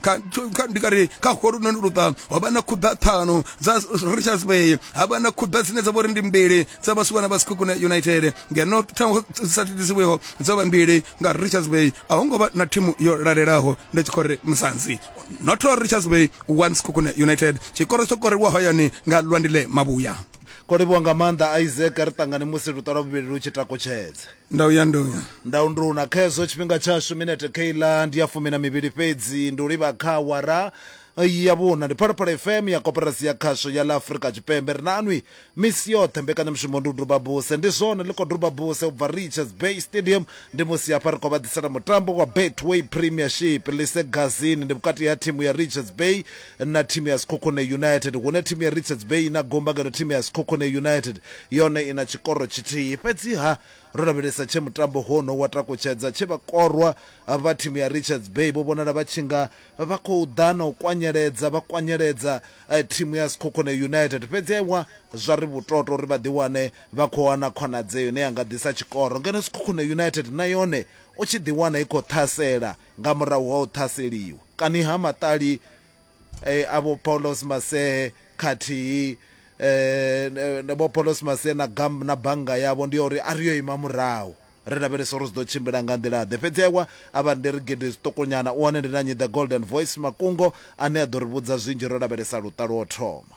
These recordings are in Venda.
kha kha ndi kare kha holu noni luṱa ho vha na khuḓa ṱhanu dza richards bay ha vha na khuḓa dzine dza vha uri ndi mbili dza vhasukana vha sikhukuna united ngeno thango sa thithisiweho dzo vha mbili nga richards bay a ho ngo vha na thimu yo lalelaho ndi tshi khou ri musanzi noto richards bay one sikhukuna united tshikoro tsho korelwa hayani nga lwandile mavhuya ko livhuwa nga maanḓa isaac ri ṱangane musi luṱa lwa vhuvhili lu tshi takutshedze ndau ya nduna ndau nduna kha hezwo tshifhinga tshashu minete keiḽa ndi ya fumi na mivhili fhedzi ndi u livha kha awara ya vhuna ndi phalaphala fm ya koperasi ya khasho ya ḽa afurika tshipembe ri na anwi misi yoṱhe mbekanyamushumo ndi u duba buse ndi zwone ḽi khou duba buse u bva richards bay stadium ndi musi hafha ri khou vha ḓisela mutambo wa betway premiership lise gazini ndi vhukati ha thimu ya richards bay na thimu ya Sekhukhune United, hune thimu ya Richards Bay i na gumba ngeno thimu ya Sekhukhune United yone i na tshikoro tshithihi. Fhedzi-ha, ro lavhelesa tshe mutambo hono wa takutshedza tshe vhakorwa vha thimu ya Richards Bay vho vhonala vha tshi nga vha khou ḓa na u kwanyeledza vha kwanyeledza thimu ya Sekhukhune United, fhedzi-ha iwa zwa ri vhutoto uri vha ḓiwane vha khou wana khonadzeo ine ya nga ḓisa tshikoro ngeno Sekhukhune United na yone u tshi ḓiwana i khou ṱhasela. nga murahu ha u ṱhaseliwa kani ha maṱali e, a vho Paulos Masee khathihi e, e, vho Paulos Masee na gam na bannga yavho ndi ya uri a ri yo ima murahu ri lavhelesa uri zwi ḓo tshimbila nga nḓila ḓe fhedzi ewa a vha ndi ri gidi zwiṱukunyana u wane ndi na nyi the golden voice makungo ane a ḓo ri vhudza zwinzhi ro lavhelesa luṱa lwo thoma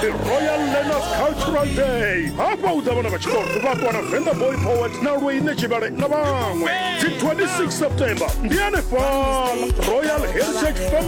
the royal learners cultural day hafha u ḓa vhana vha tshikolo vha ṱuwa na venḓa boy poet na lweine tshivhale na vhaṅwe dzi 26 september ndi hanefhala royal heritage family